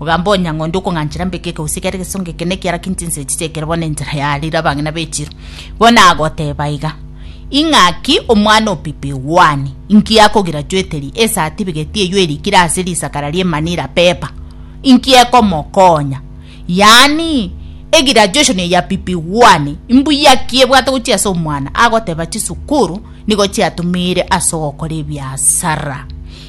Ogamba onye ng'ondi okong'anchera mbeke eke gose kere egesongo eke nekiara kinche inse echi chiekere bono enchera ya rire abang'ina b'echiro. Bono agoteba iga, Ing'aki omwana opipi Juani, inki akogira chweteri esatifigeti eyio erikire ase risakara rie Manila paper? Inki ekomokonya? Yaani, egraduation eye ya pipi Juani, imbuya ki ebwate gochia ase omwana? Agoteba chisukuru nigo chiatumire ase ogokora ebiasara.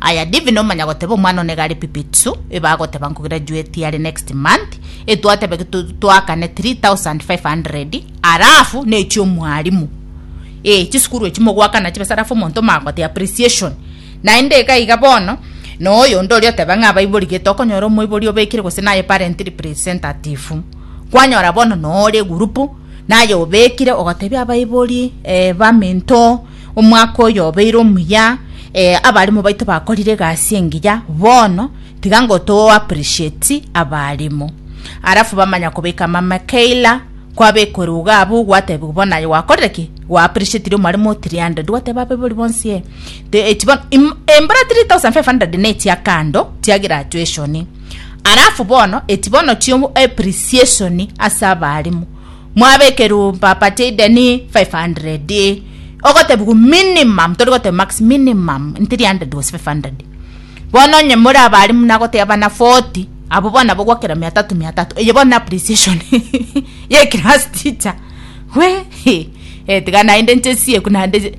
Aya Divine omanya goteba omwana one gare pipitsu iba agoteba nkograduate are next month etwatebe twakane 3500 arafu nechi omwalimu eh chisukuru echi mogwakana chibesa arafu omonto omagote appreciation naende iga iga bono noyo onde oria oteba ng'a abaibori gete okonyora omoibori obekire gose naye parent representative kwanyora bono nore gurupu naye obekire ogotebia abaibori eh baminto Omwaka oyo obeire omuya, eh, abarimo baito bakorire egasi engiya, bono tiga ngo to appreciate abarimo. Arafu bamanya kobeka mama Kayla, kwabekore uga abu gwatebigwa bono aye gwakorire ki? Gwa appreciatire omwarimo 300 gwateba abe bori bonsi eh. Te- echi bono- im- Embura 3500 ne chia kando chia graduation. Arafu bono eti bono chio appreciation ase abarimo. Mwabekerwe baparty deni 500 ogotebigwa minimum tori goteba max minimum in 300 gose 500 bono onye more abare muna goteba bana 40 abo bono nabo gwakera mia tatu mia tatu eye bono na appreciation ye class teacher wee tiga naende nchesie eku naende.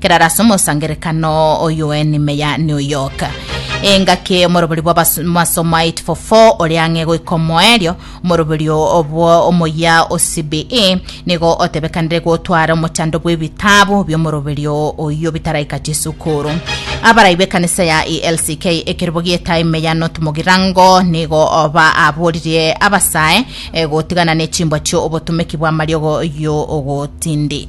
kerara ase omosangerekano oyoen meya New York. Engaki omoroberi bwa bas- masomo 844 ore ang'e goika omoerio omoroberi obwo omoyia o CBE nigo otebekanire gotwara omochando bw'ebitabu bi'omoroberi oyio bitaraika chisukuru. Abarai b'ekanisa ya ELCK ekerobo gi'etaai meya North Mogirango nigo oba aboririe abasae eh, gotigana nechimbwa chi'obotomeki bw'amariogo y'ogotindi.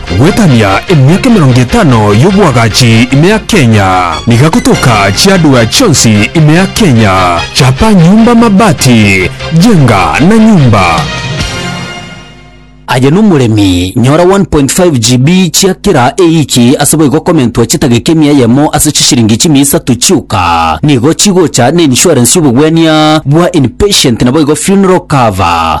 Goetania emiaka emerongo etano y'oboagachi ime ya Kenya. Niga gotoka chiadwea chionsi ime ya Kenya. Chapa nyumba mabati, jenga na nyumba. Aye nomoremi, nyora 1.5 GB chia kera ewiki ase boigo komentwa chitageka emia eyemo ase chishiringi chimia isato chioka. Nigo chigocha na insurance y'obogwenia bwa inpatient naboigo funeral cover.